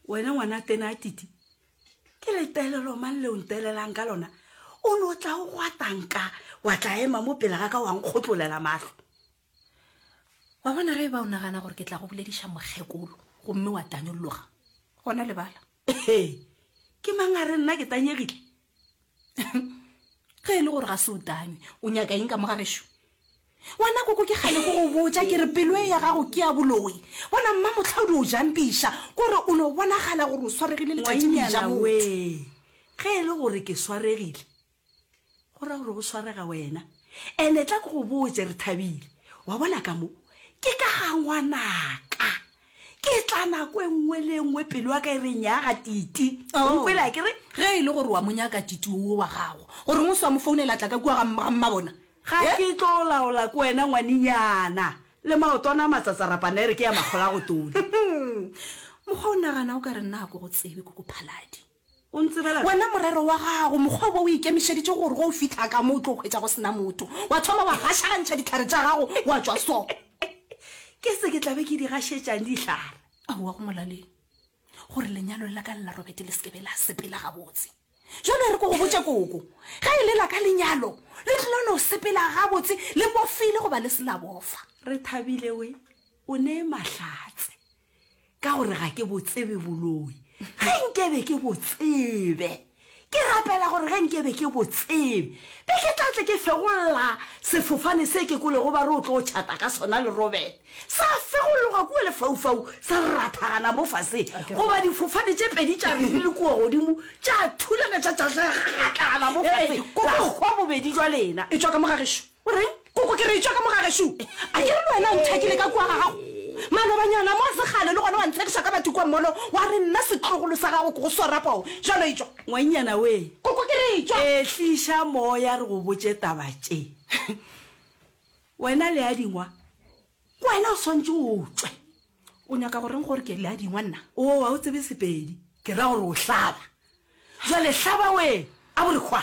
wena ngwana tena a titi ke letelelo mang leo ntelelang ka lona o ne o tla o gwatanka wa tla ema mo pele ga ka wa nkgotlolela matlho wa bona ge e ba o nagana gore ke tla go bolediša mokgekolo gomme wa tanyolologa gona lebala ke mangare nna ke tanyegile ge e le gore ga se o tame o nyaka eng ka mo gagešu wena koko ke gane go go botsa ke re pelo e ya gago ke ya boloi bona mma motlhaodi o jampiša kore o no bonagala gore o swaregile letšatšijaaoe ge e le gore ke swaregile go ra gore go swarega wena ande tla ke go botse re thabile wa bona ka mo ke ka ga ngwanaka ke tla nako e nngwe le e nngwe pelo ya ka e re nyaga titi Oh. nkwela ke re ge e le gore wa mo nyaka titi o wa gago gore ngwe se wa mo founela tla ka kua ga mma- ga mmabona ga Eh? ke tlo laola ko wena ngwanenyana le maotwana a matsatsarapana e re ke ya makgola go tona mokgwa o nagana o ka re nna ko go tsebe ko ko phaladi O ntsebela wena morero wa gago, mokgwa wo o ikemišeditše gore ge o fihla ka mo o tlo hwetša go se na motho, wa thoma wa gašagantšha dihlare tša gago wa tšwa so. Ke se ke tla be ke di gašetšang dihlare? Aowa, go molaleng gore lenyalo la ka le la Robert le se ke be la sepela gabotse. Bjalo e re ke go botše, koko, ge e le la ka lenyalo le tlilo no sepela gabotse le bofile goba le se la bofa. Rethabile we, o ne Mahlatse. ka gore ga ke botsebe boloi ge nkebe ke botsebe ke rapela gore ge nkebe ke botsebe be ke tlatle ke fegolola sefofane se ke kolego ba re o tlo tšhata ka sona le robele sa fegologa kua lefaufau sa rathagana mo fase goba difofane tše pedi tša re di le kua godimo tša thulana tša tšatlagatlagana mo fase la kgwa bobedi jwa lena e tšwa ka mogagešo O reng? Koko ke re tšwa ka mo ga gešo. A ke re le wena o nthakile ka kua ga gago? Malobanyana mo segale le gona wa nthakisa ka batho kua molo wa re nna setlogolo sa gago ke go swara poo. Jalo e tšwa. Ngwannyana we. Koko ke re e tšwa. Ehliša moya re go botše taba tše. Wena Leadingwa ke wena o swantše o tšwe. O nyaka go reng gore ke Leadingwa nna? Oo ga o tsebe Sepedi. Ke ra gore o hlaba. Jwale hlaba we, a bo re hwa.